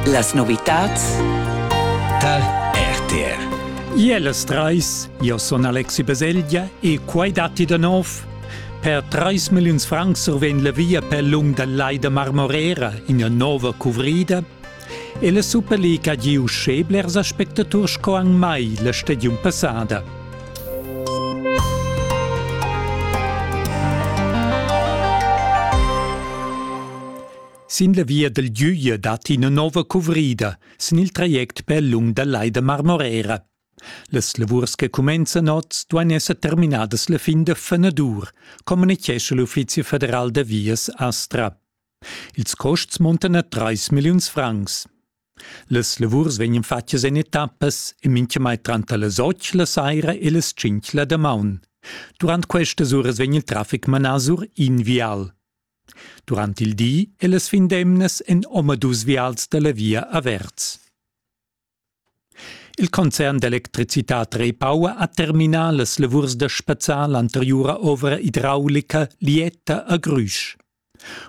Las novitats tal RTR. Iellas treis, io son Alexi Baselgia e quai datti da nov. Per 3 milliuns francs survegn la via per lung dal Lai da Marmorera ina nova cuvrida e la Superliga ha giu sche blers aspectaturs sco anc mai la stagiun passada. Sin la via dal Güglia dat ina nova cuvrida sin il traject per lung dal Lai da Marmorera. Las lavurs che cumenzan oz duain esser terminadas la fin da fenadur, communitgescha l'Uffizi federal da vias Astra. Ils costs montan a 3 milliuns francs. Las lavurs vegnan fatgas en etappas e mintgamai tranter las 8 la saira e las 5 la damaun. Durant questas uras vegn il traffic manà sur in vial. Durant il di e las fin d'emnas èn omadus vials da la via averts. Il concern d'electricitad Repower ha terminà las lavurs da spazzar l'anteriura ovra idraulica Lieta a Grüsch.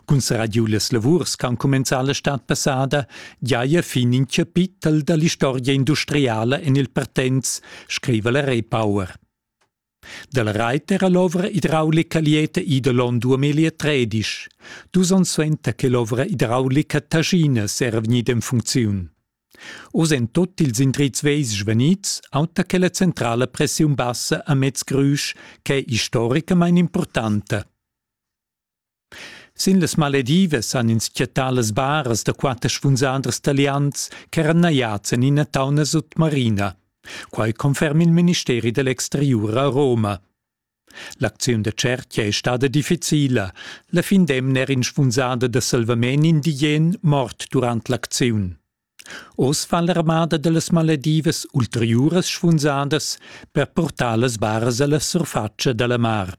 Cun serradiu las lavurs ch'han cumenzà la stad passada giaja fin in chapitel da l'istorgia industriala en il Partenz, scriva la Repower. Dal Reiter ha l'ovra idraulica lieta ida l'on 2013, dus onns suenter che l'ovra idraulica Taschines era vegnida en funcziun. Oz èn tut ils indrizs vegls svenids, auter che la centrala pressiun bassa a Mez Grüsch, ch'è istoricamain impurtanta. Sin las maledivas han ins chattà las baras da quatter spunzaders talians ch'eran najads en ina tauna sutmarina. Quai conferma il ministeri da l'exteriur a Roma. L'acziun da tschertga è stada difficila. La fin d'emna era in spunzada da salvament indigen mort durant l'acziun. Oz fa l'armada da las maledivas ulteriuras spunzadas per purtar las baras a la surfatscha da la mar.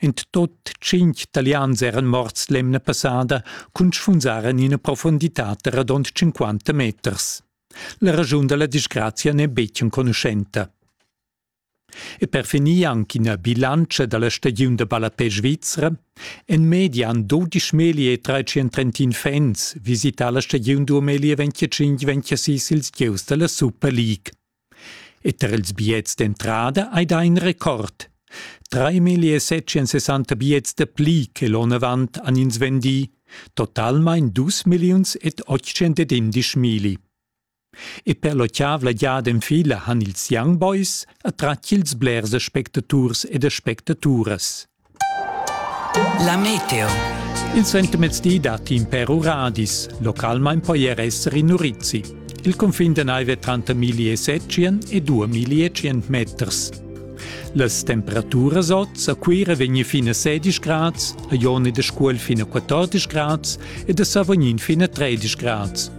In tot tschintg talians eran morts l'emna passada cun sfunzar en ina profunditad da radund cinquanta meters. La raschun da la disgrazia n'è betg enconuschenta. E per finir anche ina bilantscha da la stagiun da ballapè svizra. En media han 12 melie e 331 fans visità la stagiun 2025-26 ils gieus da la Super League. E tar ils biets d'entrada hai dà in record. 3.760 biets da pli che l'onn avant han ins vendì, totalmain dus milliuns ed otschentenindisch milli. E per l'otschavla giada en fila han ils Young Boys attratg ils blers aspectaturs ed aspectaturas. La meteo. Il sentimezdi dat in per uradis. Localmain poi er esser in urizi. Il confin de naive tranter 1700 e 2100 meters. Las temperaturas oz a Cuira vegni fin a 16 grads, a Ioni de Scuol fin a 14 grads ed a Savognin fin a 13 grads.